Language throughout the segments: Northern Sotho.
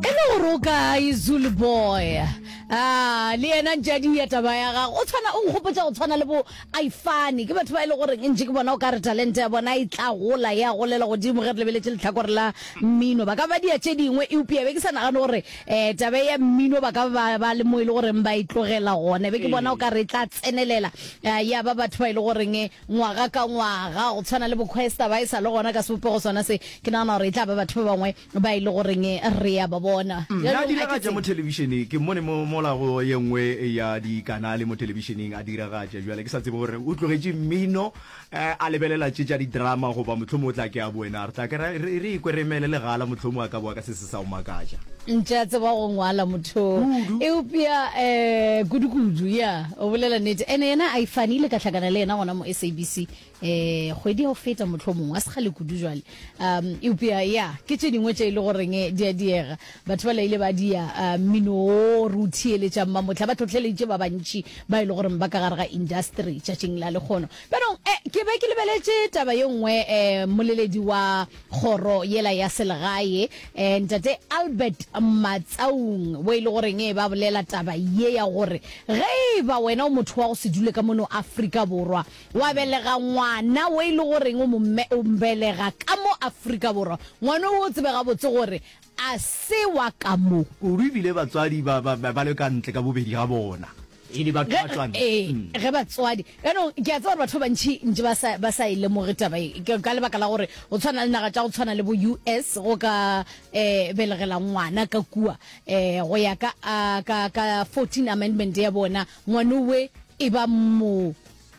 e le gore o kae zulu boy a le yena ntšadi ya taba ya gago o tshwana o nkgopotsa go tshwana le bo ifane ke batho ba e le goreng ntše ke bona o ka re talente ya bona e tla gola ya golela godimo ge re lebeletse letlhakore la mmino ba ka ba dia tše dingwe eupša be ke sa nagane gore um taba ya mmino ba ka ba ba le mo e le goreng ba e tlogela gone be ke bona o ka re e tla tsenelela um ya ba batho ba e le goreng ngwaga ka ngwaga, go tshwana le Bokhwesta, ba e sa le gona ka sebopego sona se. Ke nagana gore e tla ba batho ba bangwe ba e le goreng re ya ba bona. Mme a diragatša mo thelebišeneng. Ke mmone mo, mola go ye nngwe ya dikanale mo thelebišeneng, a diragatša. Bjale ke sa tsebe gore o tlogetše mmino, a lebelela tše tša di-drama, goba mohlomong o tla ke a boena. Re tla ke ra, re, re ikwe re emele legala, mohlomong a ka boa ka se sengwe. se sa go makatša. Ntše a tseba go ngwala motho eupša um kudukudu ya o bolela nete ene yena a ifane ile ka hlakana le yena gona mo sabc um eh, kgwedi ya go feta motlho mongwe a se kgale kudu jale um eupša ya ke tše dingwe tše e le goreng eh, di a diega batho ba laile ba dia eh, mmino o re o thiyeletšang mamotlha ba tlhotlheleditše ba bantši ba e le goreng ba ka gare ga industry tšatšing la lekgono bjanong um ke be ke lebeletše taba ye nngwe um moleledi wa kgoro yela ya selegae eh, ntate Albert Matsaung bo e le goreng e ba bolela taba ye ya gore ge e ba wena o motho wa go se dule ka mono Afrika Borwa wa belega ngwana wo e le goreng o mbelega ka mo Afrika Borwa ngwana o tsebe gabotse gore a se wa ka mo kudu ebile batswadi ba le ka ntle ka bobedi ga bona Ge, ee, ge batswadi. Yaanong, ke a tseba gore batho ba bantši ntše ba sa, ba sa e lemoge taba e, ke ka lebaka la gore go tshwana le naga tša go tshwana le bo US go ka eh, belegela ngwana ka kua eh, go ya ka, a, ka, ka 14 amendment ya bona, ngwanowe e ba mo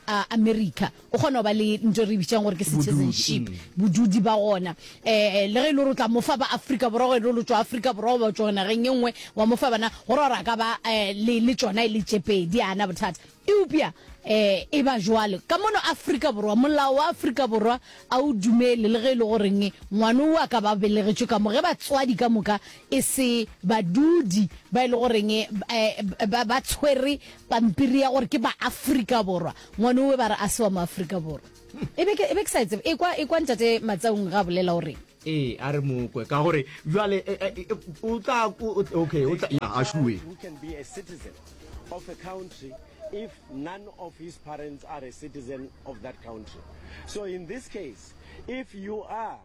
a America o kgona go ba le nto e re bitšang gore ke citizenship bodudi ba gona um le ge e le gore o tla mofa ba afrika borwa gore e le gore o tswa afrika borwa goba o tswa nageng e nngwe wa mofa bana gore gore a ka ba um le le tsona e le tsepedi ana bothata eupša um e ba jwalo ka mono afrika borwa molao wa afrika borwa a o dumele le ge e le goreng ngwana o a ka ba belegetšwe ka mo ge batswadi ka moka e se badudi ba e le goreng um ba tshwere pampiri ya gore ke baafrika borwa ngwane owe ba re a se wa moafrika borwa e be ke sa etsebe e kwa e kwa ntate matsaung ga bolela o reng ee a re mokwe ka gore jale e, e, e, o tla okay o tla ya a shuwe of a country if none of his parents are a citizen of that country so in this case if you are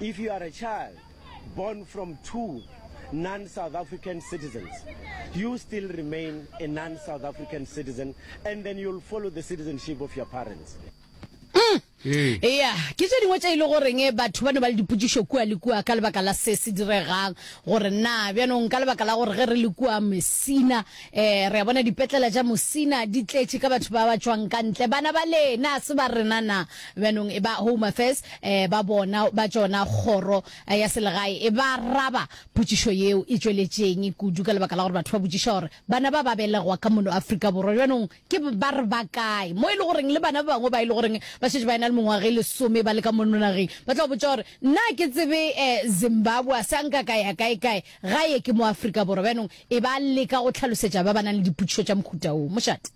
If you are a child born from two non-South African citizens, you still remain a non-South African citizen and then you'll follow the citizenship of your parents. Mm. ea ke tse dingwe tse e le goreng eh, batho ba ne ba le dipotšišo kua le kua ka lebaka la se se diregang gore na bjanong ka lebaka la gore ge re le kua mosina um re a bona dipetlela tša mosina di tletše ka batho ba ba tšwang ka ntle bana ba lena se ba rena na Bjanong e ba Home Affairs eh, ba bona ba tšona kgoro eh, ya selegae e ba raba potšišo yeo e tšweletšeng kudu ka lebaka la gore batho ba botšiša gore bana ba ba belegwa ka mono Afrika Borwa bjanong ke ba re ba kae mo e le goreng le bana ba bangwe ba e le goreng ba šetše ba e na le mengwaga e lesome ba le ka mono nageng ba tla botša gore nna ke tsebe eh, Zimbabwe a sa nka ka ya kae kae gae ke mo Afrika Borwa bjanong e ba leka go tlhalosetša ba ba nang le dipotšišo tša mohuta o mošate